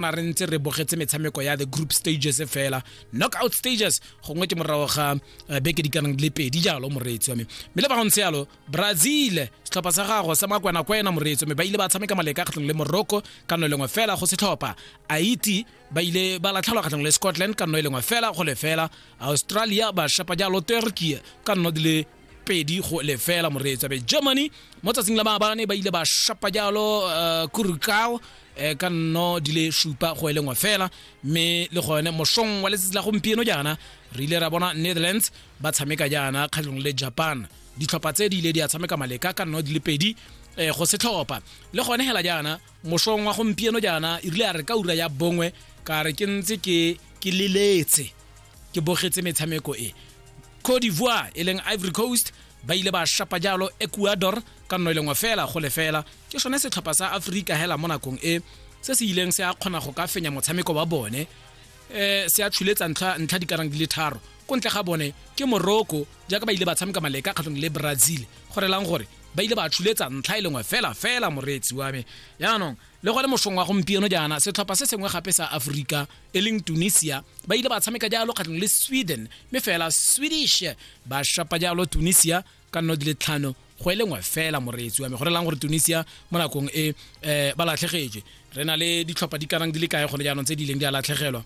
na re ntse re bogetse metshameko ya the group stages fela knockout stages gongwe ke morago ga eh, beke di kanang le pedi jalo moreetsi wa me mme le ba go ntse yalo brazil setlhopha sa gago sa makwena-kwena moreetsi wa me ba ile ba tshameka maleka kgatlhong le morocco ka no e lengwe fela go setlhopha haiti ba ile ba latlhelwa kgatlhong le scotland ka no e lengwe fela go le fela australia ba shapa jalo turkey ka nno di le pedi go lefela moreetsa be germany mo tsatsing la maabane ba ile ba shapa jalo uh, kurukao eh, ka nno di le supa go e lengwe fela mme le gone mosong wa letsatsi la gompieno jaana re ile ra bona netherlands ba tshameka jaana kgatlhong le japan ditlhopha tse di ile di a tshameka maleka ka nno di le pedi eh, go setlhopha le gone hela jaana mosong wa gompieno jaana e rile a re ka ura ya bongwe ka re ke ntse ke ke leletse ke bogetse metshameko e Cote d'Ivoire e leng Ivory Coast ba ile ba shapa jalo Ecuador ka nno e lengwe fela go lefela ke sone setlhopha sa Afrika hela mo nakong e se se ileng se a kgona go ka fenya motshameko wa bone eh se a tshuletsa ntlha ntlha di karang di le tharo ko ntle ga bone ke Morocco jaaka ba ile ba tshameka maleka kgatlhong le Brazil gore lang gore ba ile ba tshuletsa ntlha e lengwe fela fela moreetsi wa me yaanong le gone mosong wa gompieno jaana setlhopha se sengwe gape sa aforika e leng tunisia ba ile ba tshameka jalo kgatlhong le sweden mme fela swedish ba shapa jalo tunisia ka nno di le tlhano go e lengwe fela moreetsi wa me go relang gore tunisia mo nakong e um ba latlhegetswe re na le ditlhopha di kanang di le kae gone jaanong tse di ileng di a latlhegelwa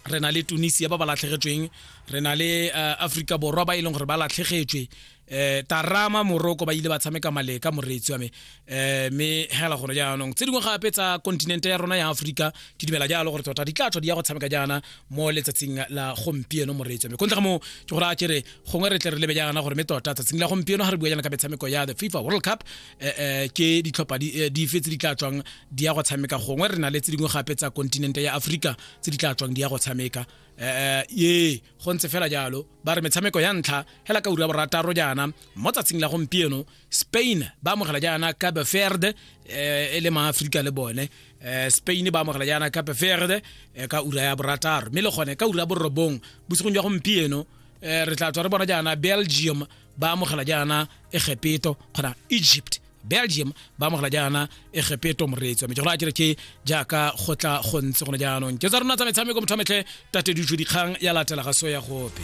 re na le tunisia ba ba latlhegetsweng re na le uh, aforika borwa ba e leng gore ba latlhegetswe eh tarama moroko ba ile ba tshameka maleka moreetsi wa me eh me hela gone jaanong tse dingwe gape tsa kontinente ya rona ya aforika ke dumela jalo gore tota di tla tswa di ya go tshameka jaana mo letsatsing la gompieno moreetsi wa me kontle ga moo ke gore a kere gongwe re tle re lebe jaana gore me tota tsatsing la gompieno ga re bua jaana ka metshameko ya the fifa world cup eh, eh, ke ditlhopha di eh, di fetse di tla tswang di ya go tshameka gongwe re na le tse dingwe gape tsa kontinente ya aforika tse di tla tswang di ya go tshameka eh, eh, ye go ntse fela jalo ba re metshameko ya ntlha hela ka ura borataro jaana mo tsatsing la gompieno spain ba amogela jaana cape verde eh, e le maaforika le bone eh, spain ba amogela jaana cape verde eh, ka ura ya borataro mme le gone ka ura borobong bosigong jwa gompieno re tla tswa re bona jaana belgium ba amogela jaana egepeto kgona egypt belgium ba amogela jaana egepeto moreetsi wa mejegolo a kere ke jaaka go tla go ntse gone jaanong ke tsa rona tsa metshameko motho a metlhe tate ditso dikgang ya latela ga so ya gope